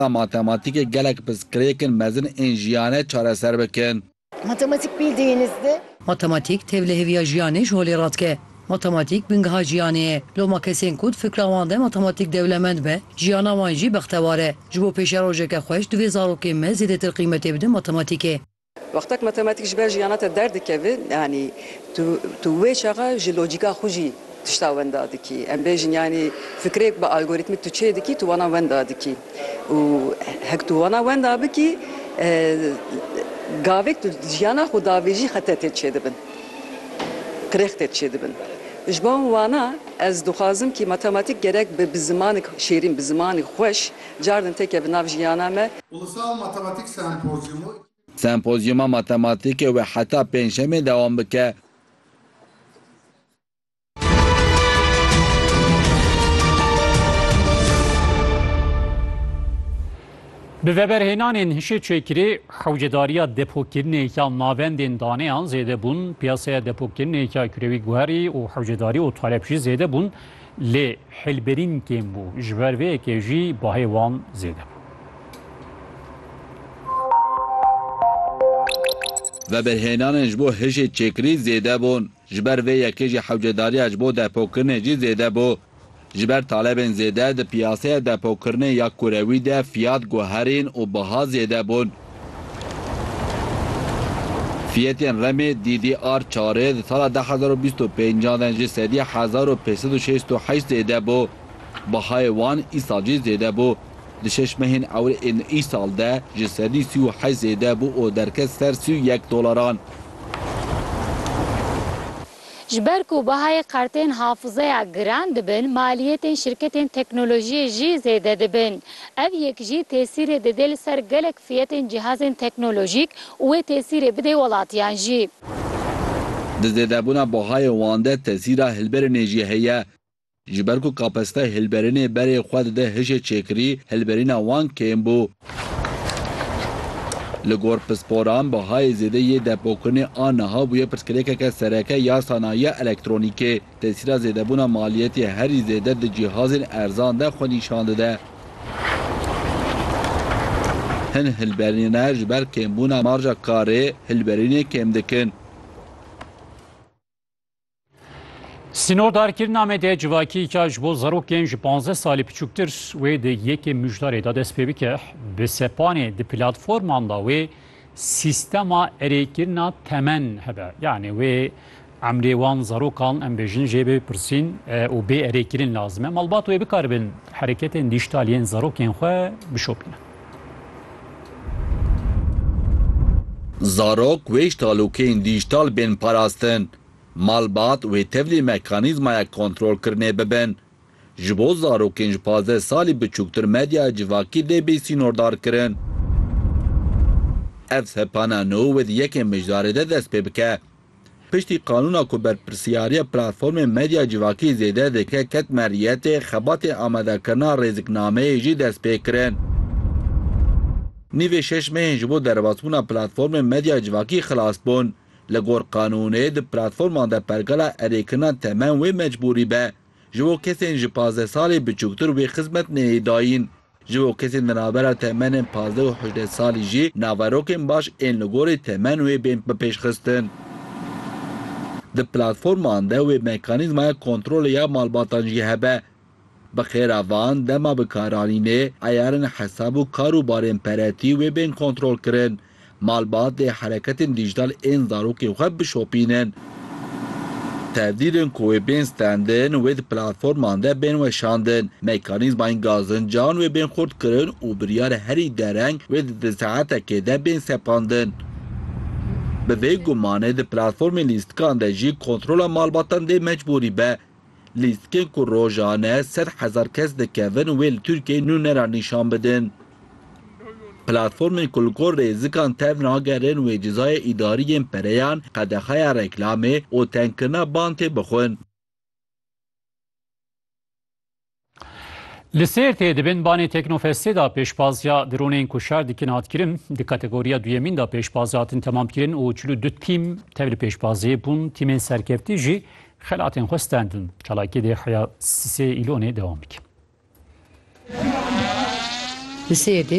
da matematîkê gelek pirsgirêkên mezin ên jiyane çareser bikin. Matematik bildiyinizde. Matematîk tevliheviya jiyanê ji holê radike. Matematîk bingeha jiyanê ye. Loma kesên ku di fikra wan de matematîk dewlemend be, jiyana wan jî bextewar e. Ji bo pêşerojeke xweş divê zarokên me zêdetir qîmetê bidin matematîkê. Wextek matematîk ji ber jiyana te derdikeve, yanî tu tu wê çaxa ji lojîka xwe jî tişta wenda dikî. Em bêjin yanî fikrêk bi algorîtmîk tu çê dikî, tu wana wenda dikî û hek tu wana wenda bikî gavêk tu jiyana xwe davêjî xete tê çêdibin, qirêx tê çêdibin. Ji bo wana ez dixwazim kî matematîk gerek be bi zimanik şêrîn, bi zimanî xweş Cardin têke bi nav jiyana me. Ulusal Matematik Sempozyumu. Sempozyuma Matematîkê wê heta Pêncşemê dewam bike. Bi veberhênanên hişê çêkirî, hewcedariya depokirinê ya navendên daneyan zêde bûn, piyaseya depokirinê ya kurewî guherî û hewcedarî û talep jî zêde bûn. Lê hêlberîn kêm bû, ji ber vê yekê jî bahê wan zêde bû. Veberhênanên ji bo hişê çêkirî zêde bûn, ji ber vê yekê jî hewcedariya ji bo depokirinê jî zêde bû. Ji ber talebên zêde di piyaseya depokirinê ya kurewî de fiyat guherîn û biha zêde bûn. Fiyetên remê DDR çarê di sala du hezar û bîst û pênc de ji sedî hezar û pênc sed û şêst û heşt zêde bû. Bihayê wan îsal jî zêde bû. Di şeş mehên ewil ên îsal de ji sedî sî û heşt zêde bû û derket ser sî û yek dolaran. Ji ber ku bihayê qertên hafizeya giran dibin, maliyetên şirketên teknolojiyê jî zêde dibin. Ev yek jî tesîrê didê li ser gelek fiyetên cihazên teknolojîk û wê tesîrê bidê welatiyan jî. Di zêdebûna bihayê wan de tesîra hilberînê jî heye. Ji ber ku kapasitey hilberînê berê xwe dide hişê çêkirî, hilberîna wan kêm bû. Li gor pisporan bihayê zêde yê depokirinê a niha bûye pirsgirêkeke sereke ya sanayiya elektronîkê. Tesîra zêdebûna maliyetê herî zêde di cîhazên erzan de xwe nîşan dide. Hin hilberîne ji ber kêmbûna marja karê hilberînê kêm dikin. Sînordarkirina me de civakî ka ji bo zarokên ji 15 salî biçûktir wê di yekê mijdarê de dest pê bike bi sepanê di platforman da wê sîstema erêkirina temen hebe yanê wê emrê wan zarokan em bêjin jê bê pirsîn û bê erêkirin lazim e malbat wê bikaribin hereketên dîjtal yên zarokên xwe bişopînin. Zarok wê ji talûkeyên dîjîtal bên parastin. Malbat wê tevlî mekanîzmaya kontrolkirinê bibin. Ji bo zarokên ji pazdeh salî biçûktir medyaya civakî dê bê sînordarkirin. Ev sepana nû wê di yekê mijdarê de dest pê bike. Piştî qanûna ku berpirsyariya platformên medya civakî zêde dike ket meriyetê, xebatên amadekirina rêziknameyê jî dest pê kirin. Nîvê şeş mehên ji bo derbasbûna platformên medya civakî xilas bûn. Li gor qanûnê di platforman de pergala erêkirina temen wê mecbûrî be. Ji bo kesên ji pazdeh salî biçûktir wê xizmet neyê dayîn. Ji bo kesên di navbera temenên pazdeh û hejdeh salî jî naverokên baş ên li gorî temen wê bên bipêşxistin. Di platforman de wê mekanîzmaya kontrolê ya malbatan jî hebe. Bi xêra van dema bi kar anînê, eyarên hesab û kar û barên peretî wê bên kontrolkirin. Malbat dê hereketên dîjtal ên zarokên xwe bişopînin. Tevdîrên ku wê bên standin wê di platforman de bên weşandin. Mekanîzmayên gazincan wê bên xurtkirin û biryar herî dereng wê di di saetekê de bên sepandin. Bi vê gumanê di platformên lîstikan de jî kontrola malbatan dê mecbûrî be. Lîstikên ku rojane sed hezar kes dikevin wê li Tirkiyeyê nûne re nîşan bidin. Platformên ku li gor rêzikan tev nagerin wê cezayê îdarî yên pereyan, qedexeya reklamê û tengkirina ban tê bixwin. Li Sêrtê di bin banê Teknofestê de pêşbaziya dronên ku şer dikin hat kirin. Di kategoriya duyemîn de pêşbaz hatin temam kirin û çil û du tîm tev li pêşbaziyê bûn. Tîmên serkeftî jî xelatên xwe stendin. Çalakiyê dê heya sisê îlonê dewam bike. Li Sêrtê